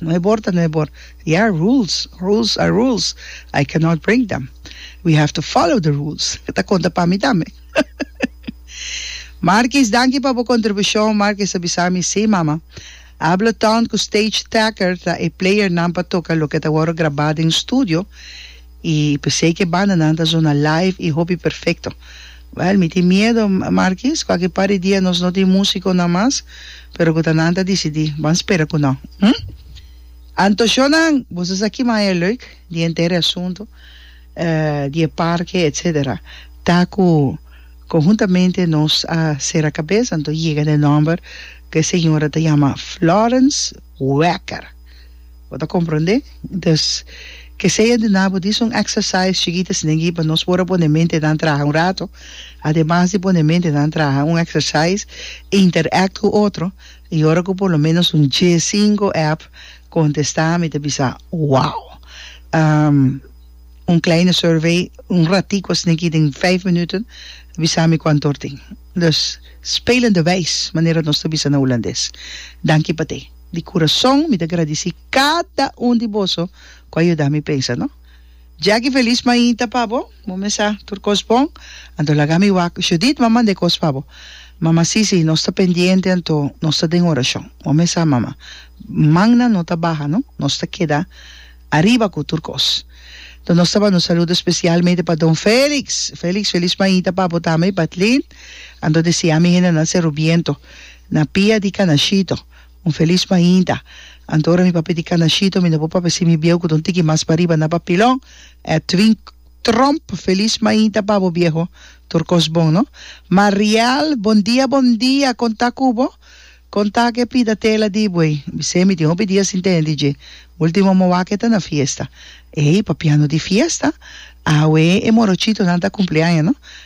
No e bor ta no e bor. Ya, rules, rules are rules. I cannot break them. We have to follow the rules. E ta konta pa mi tambe. Markis, danki pa bo kontribushon. Markis a bisa mi, Sí, mama. Ableton ku Stage Tacker ta e playernan pa toka loke ta wòrdu grabá den studio. Y pesey que banda nan ta zona live y hopi perfecto. Well, mi tin miedo, Markies, cu aki par di dia nos no tin musiconan mas, pero cu ta nan ta dicidi, ban spera cu no. Hm? Antoshonan, boso sa ki maya leuk di henter e asunto, eh, di e parke, etc. Ta cu conhuntamente nos a cera cabeza, anto yega den nomber cu e señora ta yama Florence. Wekker. Bo ta comprende? Entonces, ke sei andi na bo di son exercise chikita si negi pa nos por a pone mente nan traha un rato. Ademas di pone mente nan traha un exercise, interact cu otro y ora cu por lo menos un dje, cinco app contesta mi ta bisa, wow! Um un kleine survey, un ratico asina aki den vijf minuten bisa mi cuanto tin. Nos spelen de wijs, manera nos ta bisa na Hulandes. Danki pa te. Di kurason mi ta gradisí kada un di boso ku a yuda mi pensa no. Jackie Felis mainta pa bo, bo mesa tur kos bon, anto laga mi wak. Judith mama manda e kos pa bo. Mama Sisi nos ta pendiente anto nos ta den orashon. Bo mesa mama. Mannan no ta baha no, nos ta keda. Ariba cu tur cos. Enton nos ta banda un saludo specialmente pa don Felix. Felix, Felix Maita pa bo tambe y pa Tlin. Ando desea mi hendenan Cerro Viento na pia di Canashito un Feliz Mainta. Anto ora mi papia di Canashito mi no por papia si mi bieu cu ta un tiki mas pariba na papilon. Edwin Tromp, Feliz Mainta pa bo bieho. Tur cos bon no. Mariel, Bon dia, bon dia. Con ta cu bo? Kon ta ke pida tela di buey? Bisé mi tin hopi dia sin tende dje. Ultimo mo wak e ta na fiesta. Ey, papiando di fiesta? Awe e morochitonan ta kumpleaña no.